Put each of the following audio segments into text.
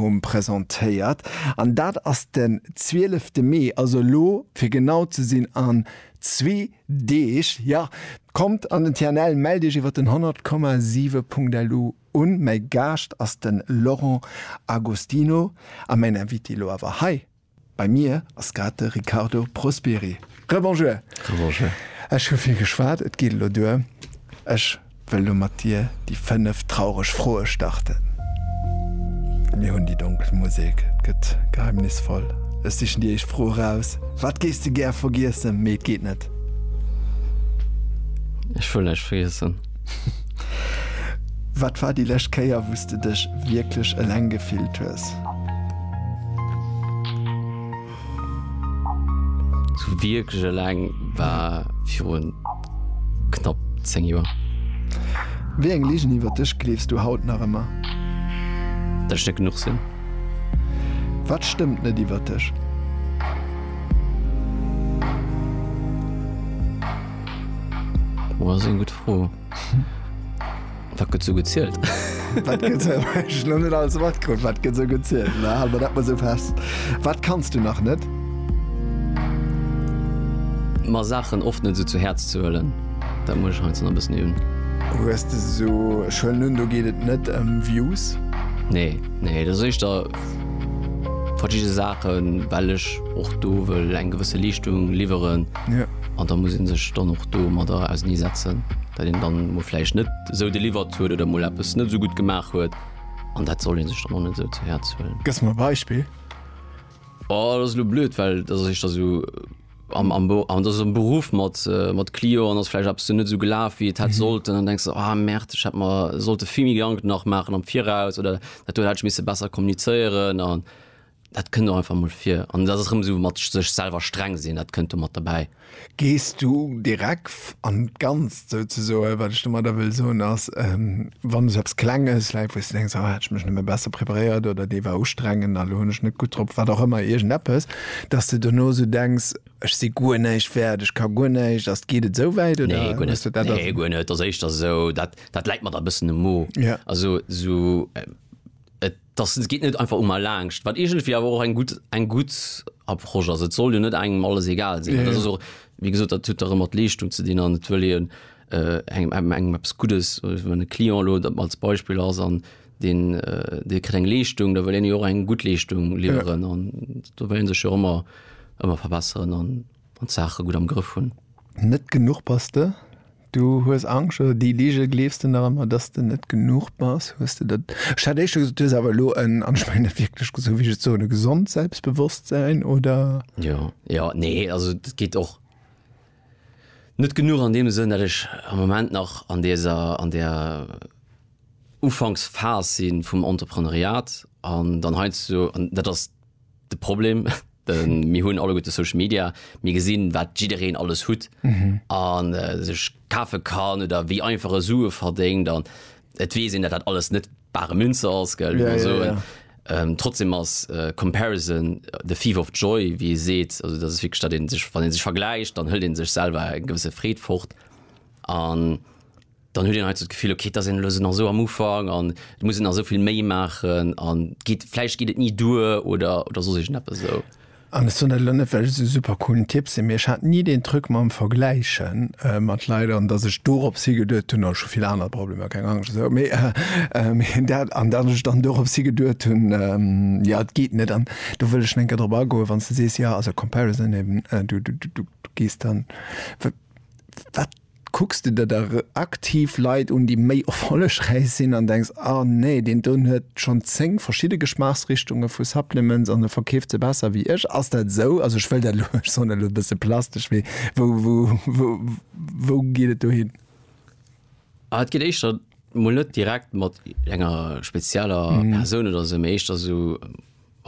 um presentéiert an dat ass den 12 Mee, also elo fir genau ze sinn an zwee Deeg. Jo, kommt an den TNL, mellt iech iwwer den 100,7.lu un. Mäi Gaascht ass den Laurent Agostino a mäin Invité elo awer hei Bei mir ass grad de Riccardo Prosperi. Rebonjour. Rebonjour. Ech hu vill geschwat, et geet elo duer. Ech wëll elo mat dir déi fënnef traureg Froe starten. Mir hunn déi donkel Musek, et gëtt geheimnisvoll. Ech sichen déi éischt Fro eraus, Wat géifs de gär vergiessen, mee et geet net? Ech wëll näischt vergiessen. Wat war déi lescht Kéier, wou s de dech wierklech eleng gefillt hues? Sou wierklech eleng war virun knapp 10 Joer. Wéi eng Ligen iwwer dech gleefs du haut nach ëmmer? Datt ech net genuch sinn. Wat stëmmt net iwwer dech? Oh, ass eng gutt Fro. Wat gëtt sou gezielt? Wat gëtt sou, ech hunn net alles matkrut, wat gëtt sou gezielt? Ma hale mer dat mol sou fest. Wat kanns du nach net? Mer Saachen oft net sou zu Häerz ze huelen, dat muss ech heiansdo nach e bëssen üben. Hues de sou, ech huelen un, do geet et net ëm Views? Nee, nee, dat ass éischter verschidde Saachen, well ech och do wëll eng gewësse Leeschtung liwweren. An da muss ee sech dann och domadder ausernee setzen, datt een dann emol vläicht net esou deliwert huet oder emol eppes net esou gutt gemaach huet. An dat soll ee sech dann och net esou zu Häerz huelen. Gëss mer e Beispill? Oh, dat ass elo blöd, well dat ass éischter esou am, am, an dat ass am Beruff mat, mat Clio an ass vläicht eppes esou net esou gelaf, wéi et hätt sollten. An denks de, ah Merde, ech hätt mer sollte vill méi Gedanken nach maachen am Viraus oder dat do hätt ech misse besser kommunizéieren. An dat kënnt och einfach mol vir an dat ass erëm esou mat sech selwer streng sinn, dat kënnt do mat derbäi. Gees du direk an d'Ganzt souzesoen? Wat ech domadder wëll soen ass, wann esou eppes Klenges läit, wou s de denks, oh hätt ech mech nëmme besser preparéiert oder dee war ustrengend a lo hunn ech net gutt drop, wat och ëmmer, iergendeppes, datt s de dono esou denks, ech si guer näischt wäert, ech ka guer näischt. Ass, geet et esouwäit oder hues de dat? Nee, guer net. Ass éischter esou, dat, dat läit mer da e bëssen um Mo. Also esou, et. Dass, et geet net einfach u mer laangscht, wat iergendwéi awer och eng gutt, eng gutt Approche ass. Et soll jo net engem alles egal sinn. Dat ass och, wéi gesot, dat huet dach ëmmer d'Leeschtung ze dinn an et wëll een engem, engem eppes Guddes. Wann e Client elo als Beispill ass an deen, dee kritt eng Leeschtung, da wëll een jo och eng gutt Leeschtung liwweren an do wëll ee sech jo ëmmer, ëmmer verbesseren an d'Saache gutt am Grëff hunn. Net genuch bass de? Du hues Angscht oder déi Lige gleefs de nach ëmmer, dass de net genuch bass? Hues de dat, ech hat éischter gesot, du hues awer elo en, an ech mengen dat wierklech esou wéi ech et soen, e gesond Selbstbewusstsein, oder? Jo, jo, nee, also et geet och net genuch an deem Sënn, dat ech am Moment nach an deser, an där Ufanksphas si vum Entrepreneuriat an dann heiansdo, an dat ass de Problem, Ähm, mir hunn alle gute Social Media, mir gesinn, wat jiddereen alles hutt mhm. an äh, sech kafe kann oder wéi einfache Sue verdéngt an et wee sinn, dat dat alles net bare Münze ass gëll ja, so. Ja, ja. Ähm, trotzdem ass äh, Comparison äh, the Thief of Joy, wie seet, also dat fi statt sech wann den sech vergleicht, dann hëll den sech selber en gewësse Freet fort an dann huet een hei esou d'Gefill, okay, et ass een elo esou nach esou am Ufank an et muss een nach esou vill méi maachen an et geet, vläicht geet et ni duer oder, oder soss iergendeppes esou. An ech soen dat elo net, well ech esou super coolen Typ sinn, mee ech hat ni deen Truc mam Vergläiche mat Leit an dass ech dorops higeduet hunn, oh ech hu vill aner Problemer, keng Angscht esou, mee dat, an dass ech dann dorops higeduet hunn, jo et geet net. An do wëll ech en kéier drop agoen, wann s de sees, jo also Comparison eben, du, du, du gees dann, wat, Kucks de der da aktiv Leit un, déi méi erfollegräich sinn an denks, ah nee, deen doen huet schonn 10 verschidde Geschmaachsrichtunge vu Supplements an e verkeeft se besser wéi ech? Ass dat esou? Also ech wëll dat elo, ech soen dat elo e bësse plastesch, mee wou geet et dohin? Ah et geet éischter mol net direkt mat enger spezieller Persoun oder esou, mee éischter esou,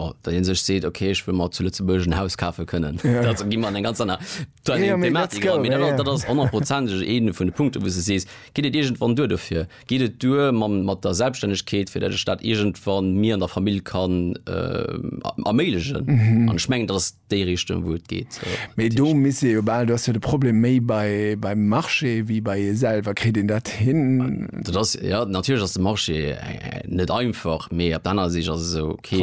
Oh, dat een sech seet okay ech wëll mer zu Lëtzebuerg en Haus kafe kënnen, dat gi mer an eng ganz aner Thematik eran. Mee dat ass honnertprozenteg ee vun de Punkte wou se sees, geet et iergendwann duer dofir? Geet et duer mat der Selbststännegkeet, fir dat ech dat iergendwann mir an der Famill kann erméiglechen? An ech mengen dat ass déi Richtung wou et geet. Mee do misst ee jo bal, do ass jo de Problem méi beim Marché wéi bei ee selwer. Kritt een dat hin? Dat ass, jo natierlech ass de Marché net einfach, mee op der anerer Sich ass et esou, okay.